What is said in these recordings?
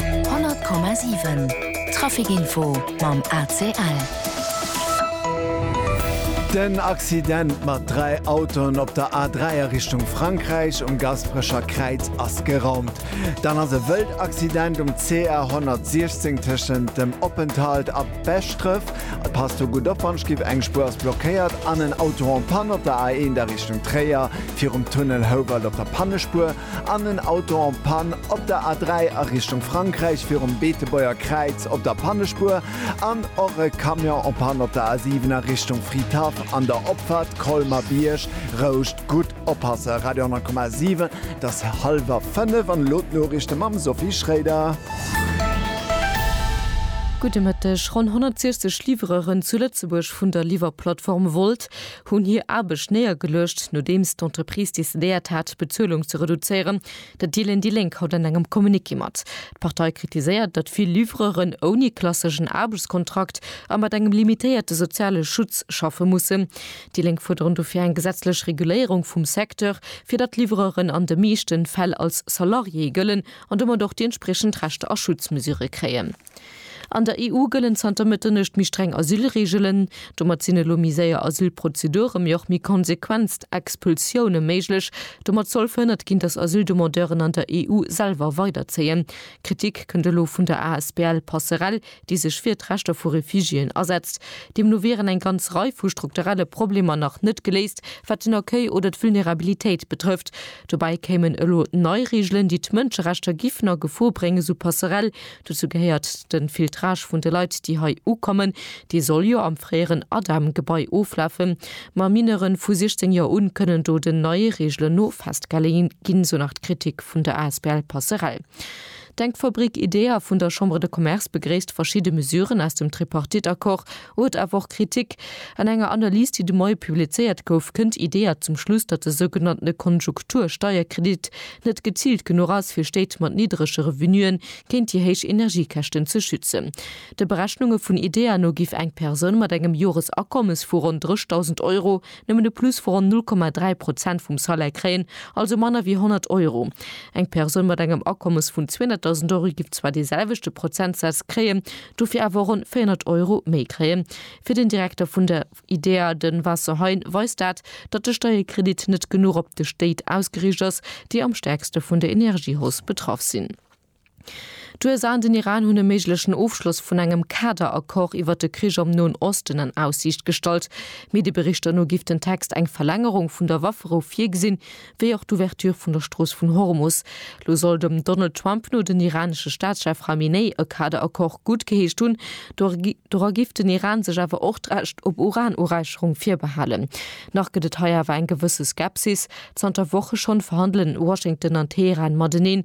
100,7 Traficinfo mam ACL. Den Accident mat 3 Autoen op der A3 a Richtung Frankräich um Gasperecher Kräiz ass geraumt. Dann ass e wëllt Accident um CR 116 tëschent dem Oppenthalt a Beschdref. Passt do gutt op, wann skipp, eng Spuer ass blockéiert an en Auto en panne op der A1 a Richtung Tréier virum Tunnel Houwald op der Pannespuer. An en Auto en Panne op der A3 a Richtung Frankräich virum Beetebuerger Kräiz op der Pannespuer an och e Camion en Panne op der A7 a Richtung Fridhaff an der Opfahrt Colmer-Bierg. Rouscht gutt oppassen. Radio 10,7, et ass hallwer 5 an elo d'Noriichte mam Sophie Schréider. Gudde Mëtteg. Ronn 160 Livreuren zu Lëtzebuerg vun der Liwwerplattform Wolt hunn hir Aarbecht néiergeluecht, nodeems d'Entreprise decidéiert hat, d'Bezuelung ze reduzéieren. Dat deelen déi Lénk haut an engem Communiqué mat. D'Partei kritiséiert, datt vill Livreuren ouni klasseschen Aarbechtskontrakt a mat engem limitéierte soziale Schutz schaffe mussen. Déi Lénk fuerderen dofir eng gesetzlech Reguléierung vum Secteur, fir datt d'Livreuren an de meeschte Fäll als Salariéë gëllen an domat och déi entspriechend Rechter a Schutzmesure kréien. An der EU gëllen zanter Mëtternuecht méi streng Asylreegelen. Domat sinn elo méi séier Asylprozedure mee och méi konsequenst Expulsioune méiglech. Domat soll verhënnert ginn, datt Asyldemandeuren an der EU selwer weiderzéien. Kritik kënnt elo vun der asbl Passerelle, déi sech fir d'Rechter vu Refugiéen asetzt. Deemno wieren eng ganz Rei vu strukturelle Problemer nach net geléist, wat den Accueil oder d'Vulnerabilitéit betrëfft. Dobäi kéimen elo nei Reegelen, déi d'Mënscherechter giffen a Gefor bréngen, sou d'Passerelle. Dozou gehéiert de Filtrage vun de Leit, déi hei ukommen. Dee soll jo am fréieren ADEM-Gebai oflafen. Ma Mineuren vu 16 Joer un kënnen do den neie Reegelen no festgehale ginn, esou nach d'Kritik vun der asbl Passerell. D'Denkfabrik IDEA vun der Chambre de Commerce begréisst verschidde Mesuren aus dem Tripartite-Accord, Huet awer och Kritik. An enger Analys, déi de Moie publizéiert gouf, kënnt IDEA zum Schluss, datt de sougenannte Konjunktur-Steierkredit net geziilt genuch ass, fir Stéit mat niddrege Revenuen géint déi héich Energiekäschten ze schützen. De Berechnunge vun IDEA no giff eng Persoun mat engem Joresakommes vu ronn 3.000 Euro, Nëmmen de Plus vu ronn 0,3 Prozent vum Salaire kréien, also manner wéi 100 Euro. Eng Persoun mat engem Akommes vun 200.000 Euro giff zwar dee selwechte Prozentsaz kréien, dofir awer ronn 400 Euro méi kréien. Fir den Direkter vun der IDEA, de Vincent Hein, weist dat, datt de Steierkredit net genuch op déi Stéit ausgeriicht ass, déi am stäerkste vun der Energiehausse betraff sinn. D'USA an den Iran hunn e méiglechen Ofschloss vun engem Kader-Accord iwwer de Krich am Noen Osten an Aussiicht gestallt. Medieberichter no giff den Text eng Verlängerung vun der Wafferou virgesinn, wéi och d'Ouverture vun der Strooss vun Hormus. Lo soll dem Donald Trump no den iranesche Staatschef Khamenei e Kader-Accord guttgeheescht hunn. Dora giff den Iran sech awer och d'Recht op Uran-Uräicherung virbehalen. Nach gëtt et hei awer eng gewësse Skepsis. Zanter Woche schonn verhandelen Washington an Teheran mateneen,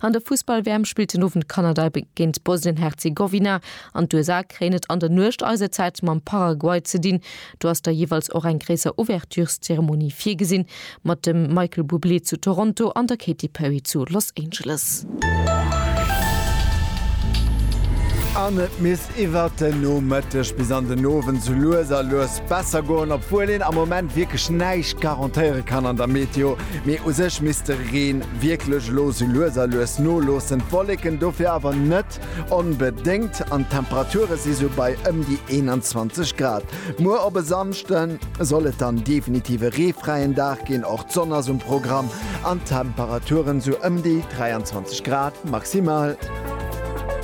An der Fussball-WM spillt den Owend Kanada géint Bosnien-Herzegowina an d'USA kréien et an der Nuecht eiser Zäit mam Paraguay ze dinn. Do ass da jeeweils och eng gréisser Ouvertureszeremonie virgesinn, mat dem Michael Bublé zu Toronto an der Katy Perry zu Los Angeles. iwwert den Nomëtteg bis an den Owend sou lues a lues besser goen, obwuel een am Moment wierklech näischt garantéiere kann an der Meteo. Mee u sech misst de Reen wierklech elo sou lues a lues noloossen, d'Wolleken dofir awer net onbedéngt an d'Temperature si sou bei ëm déi 21 Grad. Muer op e Samschde soll et dann definitiv e reefräien Dag ginn, och d'Sonn ass um Programm an d'Temperature sou ëm déi 23 Grad maximal.